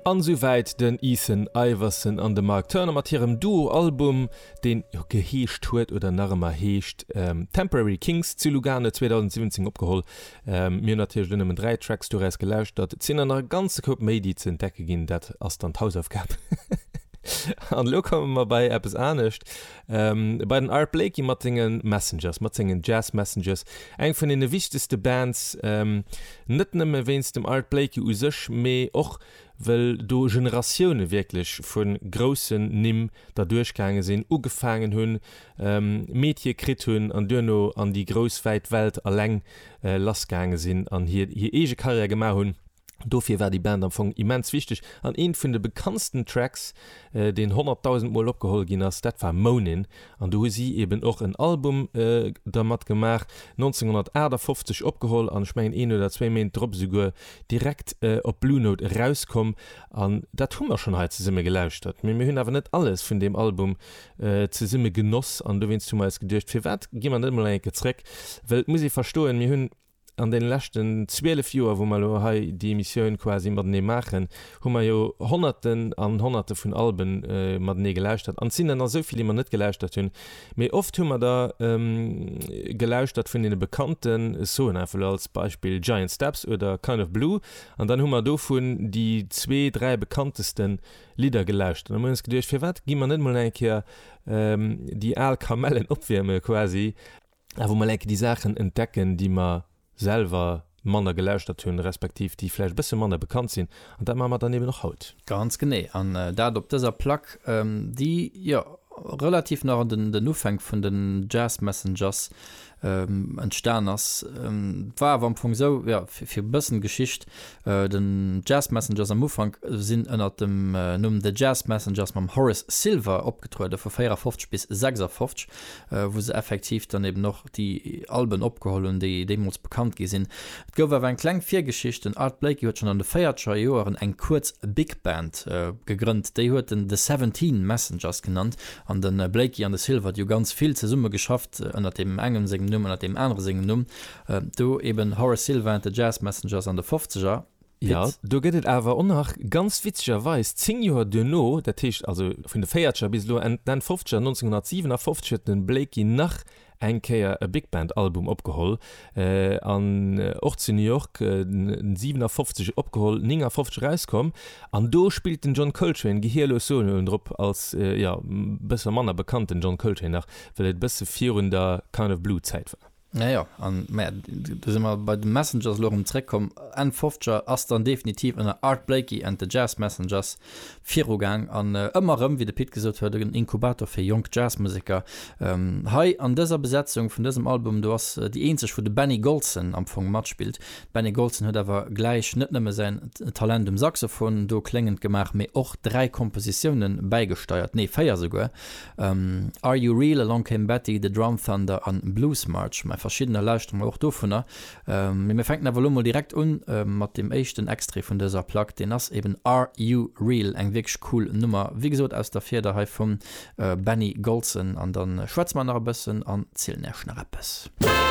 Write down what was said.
An esou wäit den Ethan Iverson an de Mark Turner mat hirem Duo-Album, deen geheescht huet oder nach ëmmer heescht Temporary Kings, zu Lugano 2017 opgeholl. Mir hunn natierlech elo nëmmen dräi Tracks doraus gelauschtert, et sinn der nach e ganze Koup méi déi ze entdecke ginn, dat ass dann d'Hausaufgab. An elo komme mer bei eppes anescht, Bei den Art Blakey mat sengen Messengers, mat sengen Jazz Messengers, eng vun deene wichtegste Bands, net nëmme wéinst dem Art Blakey u sech, mee och well do Generatioune wierklech vu groussen Nimm derduerch gaange sinn, ugefaangen hunn, Meetier kritt hunn an duerno an déi grouss wäit Welt eleng lass gaange sinn an hir eege Karriär gemaach hunn. Dofir war déi Band am Fong immens wichteg an een vun de bekanntsten Tracks deen 100.000 mol opgeholl ginn ass dat war Moanin' an do hu si eben och en Album dermat gemaach, 1958 opgeholl an ech mengen een oder zwéi Méint drop esouguer direkt op Blue Note erauskomm an dat hu mer schonn hei zesumme gelauschtert. Mee mir hunn awer net alles vun deem Album zesumme genoss an dowéinst hu mer eis geduecht firwat gi mer net emol eng Kéier zréck well et muss ee verstoen mir hunn An deene leschten 12 Joer, wou mer elo hei déi Emissioun quasi matenee maachen, hu mer jo Honnerten an Honnerte vun Albe matenee gelauschtert. An et sinn der nach esou vill, déi mer net gelauschtert hunn. Mee oft hu mer der gelauschtert vun deene bekannten, ech soen einfach elo als Beispill Giant Steps oder Kind of Blue, an dann hu mer dovun déi zwee, dräi bekannteste Lidder gelauschtert. An da hu mer eis geduecht, Firwat gi mer net emol eng Kéier déi al Kamellen opwiermen quasi? awer mol enke déi Saachen entdecken, déi mer selwer manner gelauschtert hunn, respektiv déi vläicht e bësse manner bekannt sinn. An dat maache mer dann eben och haut. Ganz genee. An dat op dëser Plack, déi, jo, relativ nach an den Ufänk vun den Jazz Messengers entstan ass. War awer am Fong esou, jo, fir e bëssen Geschicht, den Jazz Messengers am Ufank sinn ënnert dem Numm The Jazz Messengers mam Horace Silver opgetrueden, vu 54 bis 56. wou se effektiv dann eben och déi Alben opgeholl hunn, déi deemools bekannt gi sinn. Et gouf awer eng kleng Virgeschicht, den Art Blakey huet schonn an de véierzeger Joeren eng kuerz Big Band gegrënnt, déi huet en The Seventeen Messengers genannt, an de Blakey an de Silvert hu ganz vill zesumme geschafft, ënnert deem engem sengem Numm, ënnert deem anere sengem Numm, do eben Horace Silver and the Jazz Messengers an de fofzeger. Jo, do gëtt et awer och nach, ganz witzegerweis, zéng Joer duerno, dat heescht also vun de Véierzeger bis elo Enn d'Enn Fofzeger, 1957 huet de Blakey nach eng Kéier e Big-Band-Album opgeholl an och zu New York 57 opgeholl, 59 erauskomm. An do spillt den John Coltrane gehierlos Soloen drop als, jo, e bësse manner bekannten John Coltrane nach, well et e bësse virun der Kind of Blue-Zäit war. Ah jo, an maja, do si mer bei de Messengers elo erëm zréckkomm. Enn Fofzeger ass dann definitiv ënner Art Blakey and the Jazz Messengers virugaang an ëmmer erëm, wéi de Pit gesot huet, en Inkubator fir jonk Jazzmuseker. Hei an dëser Besetzung vun dësem Album do ass déi eenzeg, wou de Benny Golson am Fong matspillt. De Benny Golson huet awer gläich net nëmme säin Talent um Saxophon do kléngend gemaach, mee och dräi Kompositiounen bäigesteiert, nee, véier esouguer, Are You Real, Along Came Betty, The Drum Thunder an Blues March. Mä verschiddener lauschtere mer och dovunner. Mee mir fänken awer elo mol direkt un mat deem éischten Extrait vun dëser Plack. Deen ass eben Are You Real, eng wierklech cool Nummer, wéi gesot aus der Fieder hei vum Benny Golson. An da schwätze mer nach e bëssen an zielen Iech nach eppes.